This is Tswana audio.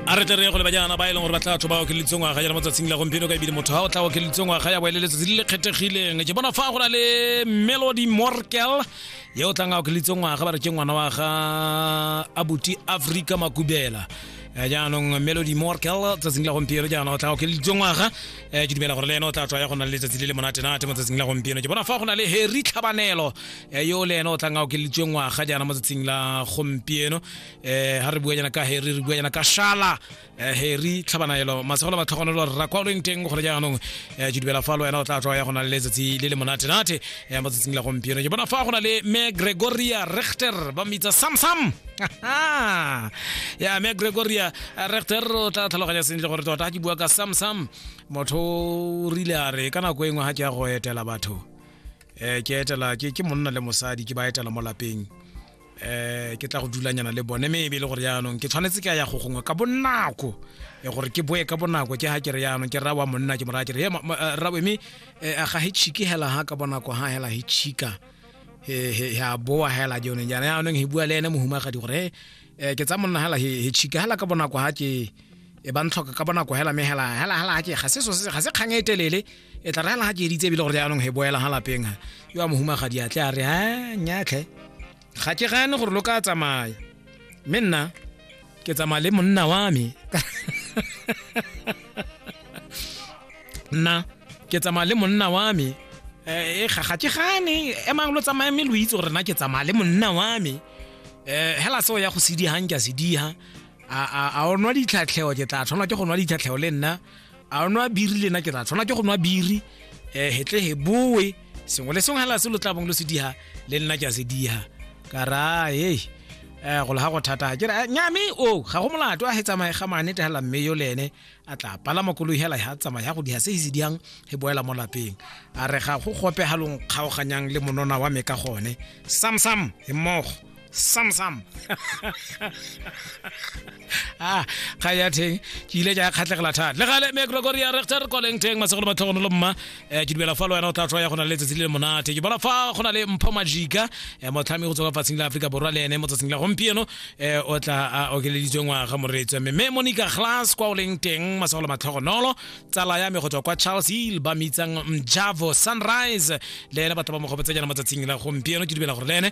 a re tle re ye go le bajana ba e leng gore ba tla batho ba okeleditse ngwaga jana mo tsatsing la gompieno ka ebile motho ga o tla okeleditse ngwaga ya boele letsatsi le le kgethegileng ke bona fa go na le melody morkel ye o tlang a okeleditse ngwaga ba re ke ngwana wa ga abuti africa makubela Eh, jaanong melody morkel tsatsing la gompieno jaana o tla okeleditse ngwaga Eh, ke dumela gore le ene o tla tswa ya go na le letsatsi le le monatenate mo tsatsing la gompieno ke bona fa go na le harry tlhabanelo eh, yo le ene o tlang a okeleditse ngwaga jaana mo tsatsing la gompieno eh ha re bua jana ka heri re bua jana ka shala eh, heri tlhabanaelo masegolo ba tlhogonelo rra kwa o leng teng gore jaanong eh, ke dumela fa le wena o tla tswa ya go na le letsatsi le le monatenate eh, mo tsatsing la gompieno ke bona fa go na le me gregoria rechter ba mmitsa samsam ya me gregoria rechter o tla tlhaloganya sentle gore tota ke bua ka samsam motho o rile a re ka nako e nngwe ga ke ya go etela batho um ke etela ke ke monna le mosadi ke ba etela mo lapeng eh ke tla go dulanyana le bone mme ebe e le gore jaanong ke tshwanetse ke a ya go gongwe ka bonako e gore ke boe ka bonako ke ga ke re jaanong ke rawa monna ke moraya ke re eh, rawe mme eh, ga he chike hela ha ka bonako ha hela he chika ya boa hela jone jana jaanong he bua le ene mohumagadi gore eh, ke tsa monna hela he chika hela ka bonako ha ke e ba ntlhoka ka bonako hela mme hela hela hela ke ga se ga se kgang e telele e tla rela ga ke editse ebile gore jaanong he boela ga lapeng ga yo a mohumagadi a tle a re a nyatlhe ga ke gane gore lo ka tsamaya mme nna ke tsamaya le monna wa me nna ke tsamaya le monna wa me eh, e ga ke gane emang lo tsamaye mme lo itse gore na ke tsamaya le monna wa me um hela seo ya go sedigang ke a sediga a o nwa ditlhatlheo ke tla tshwanelwa ke go nwa ditlhatlheo le nna a nwa biri le nna ke ra tshwana ke go nwa biri um hetle he boe sengwe le sengwe hela se lo tla bong lo se diha le nna ke a se diha ka ra hey um go le ga go thata ke re nyame o ga go molato a he tsamaye ga mane te hela mme yo le ene a tla palama koloi hela ha tsamaya ya go diha se se diyang he boela mo lapeng a re ga go gope halong kgaoganyang le monona wa me ka gone samsam he mmogo sam sam ah ga ya theng ke ile ja khatlegela thata le gale me gregory ya rechter koleng teng masegolo matlhogono lo mma eh, ke dumela fa le wena o tla tswa ya go na le letsatsi le monate ke bona fa go na le mpho majika eh, motlhami go tswa fa tsing la Afrika borwa le ene mo tsatsing la gompieno eh, o tla a okeleditswe ngwaga moretswe mme me monica glass kwa o leng teng masegolo matlhogonolo tsala ya me go tswa kwa charles hill ba mitsang mjavo sunrise le ene batho ba mo gopetse jana mo tsatsing la gompieno ke dumela gore le ene